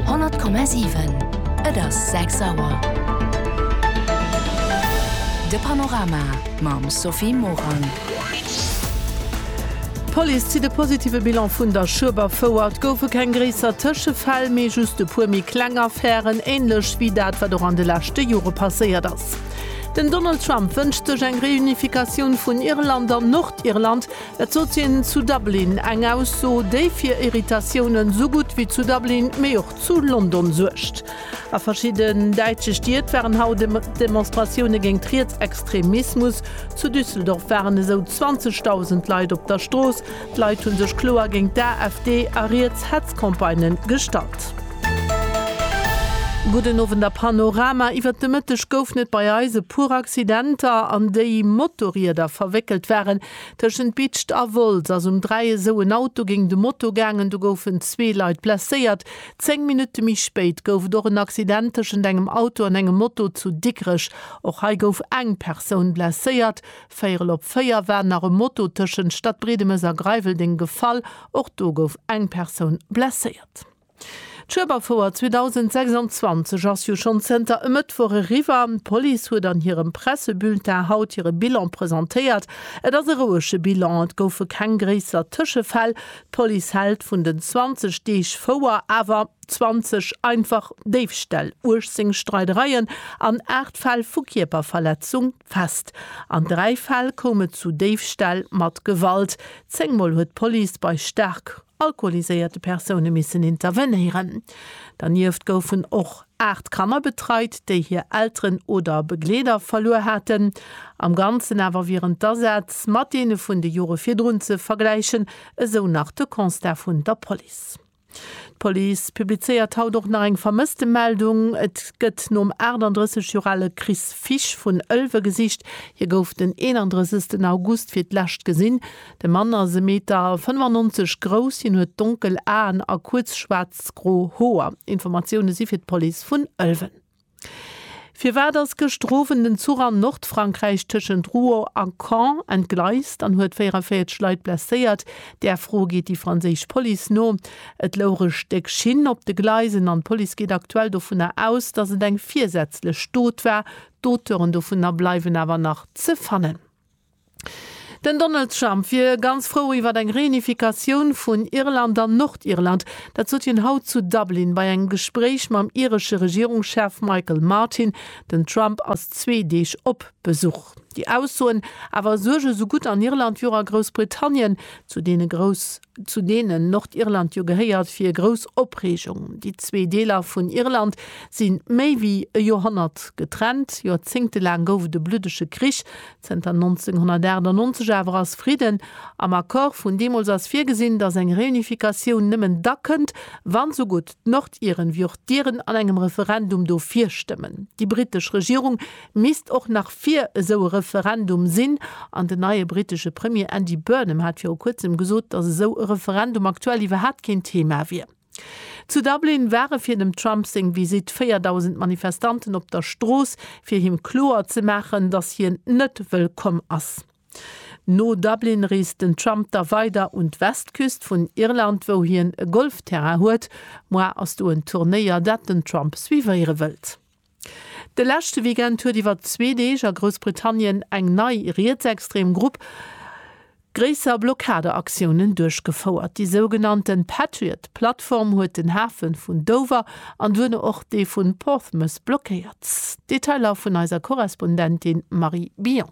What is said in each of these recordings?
100,7. Et ass 6 Auer. De Panorama mam Sophie Morang. D'Police zitt e positive Bilan vun der Schueberfouer. Et goufe keng gréisser Tëschefäll, mee just e puer méi kleng Affären, änlech wéi dat, wat och an de leschte Jore passéiert ass. Den Donald Trump wënscht sech eng Reunifikatioun vun Irland an Nordirland. Dat sot hien zu Dublin, eng Ausso, déi fir Irritatiounen esou gutt wéi zu Dublin, mee och zu London suergt. A verschidden däitsche Stied waren haut Demonstratioune géingt Rietsextremismus. Zu Düsseldorf waren esou 20.000 Leit op der Strooss. D'Leit hu sech kloer géingt d'AfD a riets Hetzcampagnë gestallt. Gudden Owend a Panorama. Iwwert de Mëtteg goufen et bei eis e puer Accidenter, an déi Motorrieder verwéckelt waren. Tëschent Bitscht a Wolz ass um Dräiesou en Auto géint e Moto gaangen. Do goufen zwee Leit blesséiert. Zéng Minutte méi spéit gouf et och en Accident tëschent engem Auto an engem Moto zu Dikrech. Och hei gouf eng Persoun blesséiert. Véierel op véier war nach e Moto tëschent Stadbriedemes a Greiweldeng gefall. Och do gouf eng Persoun blesséiert. D'Schueberfouer 2026 ass jo schonn zënter e Mëttwoch eriwwer. D'Police huet an hirem Pressebulletin haut hire Bilan presentéiert. Et ass e rouege Bilan, et goufe keng gréisser Tëschefäll. D'Police hält vun den 20 Deeg Fouer awer 20 einfach Déifställ, 18 Streidereien an 8 Fäll vu Kierperverletzung fest. An dräi Fäll koum et zu Déifställ mat Gewalt. Zéngmol huet d'Police bei staark alkoholiséierte Persoune missen intervenéieren. Dernieft goufen och 8 Kanner betreit, déi hir Elteren oder Begleeder verluer haten. Am Ganzen awer wieren d'Asätz mat deene vun de Jore virdrun ze vergläichen, esou nach de Constat vun der Police. D'Police publizéiert haut och nach eng Vermësstemeldung. Et gëtt nom 38 Joer ale Chris Fisch vun Ëlwe gesicht. Hie gouf den 31 August fir d'lescht gesinn. De Mann ass e Meter 95 grouss, hien huet donkel Aen a kuerz schwaarzgro Hoer. Informatioune si fir d'Police vun Ëlwen. Firwat ass gëschter Owend en Zuch an Nordfrankräich tëschent Rouen a Caen entgleist an huet 44 Leit blesséiert? Där Fro geet déi franséisch Police no. Et louch e Stéck Schinn op de Gleisen an d'Police geet aktuell dovunner aus, datt et eng virsätzlech Dot war. D'Auteuren dovunner bleiwen awer nach ze fannen. Den Donald Trump wier ganz frou iwwer eng Reunifikatioun vun Irland an Nordirland. Dat sot hien haut zu Dublin bei engem Gespréich mam iresche Regierungschef Michael Martin. Den Trump ass zwee Deeg op Besuch. Déi Aussoen awer suerge sougutt an Irland wéi och a Groussbritannien zu deene grouss. zu deenen Nordirland jo gehéiert, fir grouss Opreegung. Déi zwee Deeler vun Irland si méi wéi e Joerhonnert getrennt. Joerzéngte laang gouf et e bluddege Krich, zënter 1998 awer ass Fridden. Am Accord vun deemools ass virgesinn, datt eng Reunificatioun nëmmen da kënnt, wann esou gutt d'Nordiren wéi och d'Iren an engem Referendum dofir stëmmen. Déi britesch Regierung Misst och nach fir esou e Referendum sinn. An den neie brittesche Premier Andy Burnham hat viru kuerzem gesot, datt esou e Referendum aktuell iwwerhaapt keen Thema wier. Zu Dublin ware fir dem Trump seng Visitt 4.000 Manifestanten op der Strooss, fir him kloer ze maachen, datt hien net wëllkomm ass. No Dublin reest den Trump da weider un d'Westküst vun Irland, wou hien e Golfterrain huet. Muar ass do en Turnéier, dat den Trump suivéiere wëllt. De leschte Weekend huet iwwer zwee Deeg a Groussbritannien eng nei rietsextrem Grupp gréisser Blockadeaktiounen duerchgefouert. Déi sougenannte Patriot-Plattform huet den Hafe vun Dover an duerno och dee vun Portsmouth blockéiert. Detailer vun eiser Korrespondentin Marie Billon.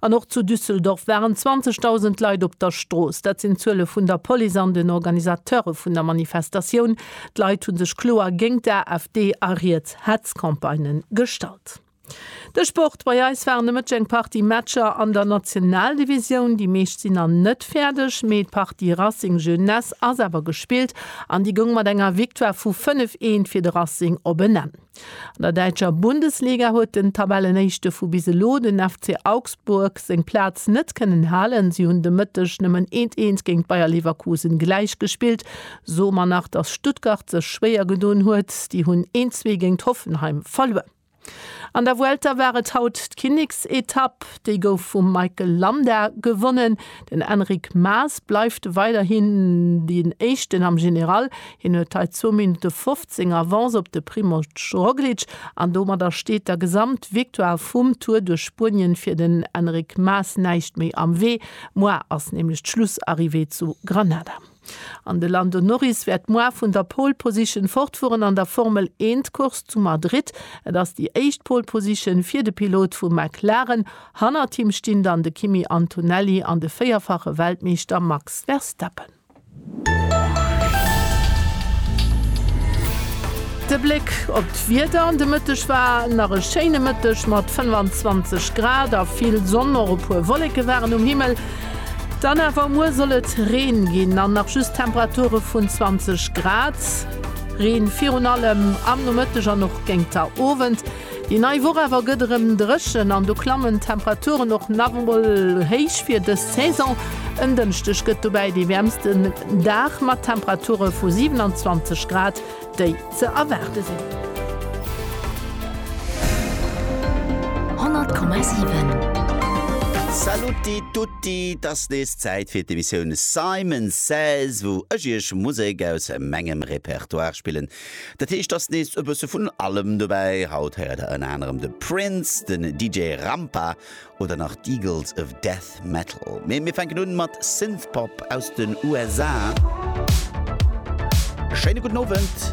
An och zu Düsseldorf waren 20.000 Leit op der Strooss. Dat sinn d'Zuele vun der Police an den Organisateure vun der Manifestatioun. D'Leit hu sech kloer géint d'AfD a riets Hetzcampagnë gestallt. De Sport, Bei eis waren e Mëtteg eng Partie Matcher an der Nationaldivisioun. Déi meescht sinn nach net fäerdeg, mee d'Partie Racing Jeunesse ass awer gespillt an déi goung mat enger Victoire vu 5, 1 fir de Racing op en Enn. An der däitscher Bundesliga huet den Tabellenéischte vu bis elo, den FC Augsburg, seng Plaz net kënnen halen. Si hunn de Mëtteg nëmmen eent eent géint Bayer Leverkusen gläich gespillt. Soe mer nach, dass Stuttgart sech schwéier gedoen huet, déi hunn een zwee géint Hoffenheim verluer. An der Vuelta war et haut d'Kinneksetapp. Déi gouf vum Michael Landa gewonnen. Den Enric Mas bleift weiderhin deen Éischten am General. Hien huet hei zwou Minutte 15 Seng Avance op de Primož Roglič an domadder steet der Gesamtvictoire vum Tour duerch Spuenien fir den Enric Mas näischt méi am Wee. Muar ass nämlech d'Schlussarrivée zu Granada. An de Lando Norris wäert muar vun der Pole Position fortfueren an der Formel Een d'Course zu Madrid. Et ass déi éischt Pole Position fir de Pilot vu McLaren. Hannert him stinn dann de Kimi Antonelli an de véierfache Weltmeeschter Max Verstappen. De Bléck op d'Wieder an de Mëtteg war nach e schéine Mëtteg mat 25 Grad a vill Sonn. Och e puer Wolleke waren um Himmel. Dann awer muer soll et Reen ginn an nach just Temperature vun 20 Grad. Reen virun allem am Nomëtteg an och géingt der Owend. Déi nei Woch awer gëtt erëm dréchen an do klammen d'Temperaturen och nach emol héich fir dës Saison. En Dënschdeg gëtt dobäi dee wäermsten Dag mat Temperature vu 27 Grad, déi ze erwaarde sinn. 100,7. Saluti tutti, et ass nees Zäit fir d'Emissioun Simon Says, wou ech iech Musek aus mengem Repertoire spillen, Dat heescht ass nees e bësse vun allem dobäi. Haut héiert der ënner anerem de Prince, den DJ Rampa oder nach d'Eagles of Death Metal. Mee mir fänken un mat Synthpop aus den USA. Schéine gudden Owend.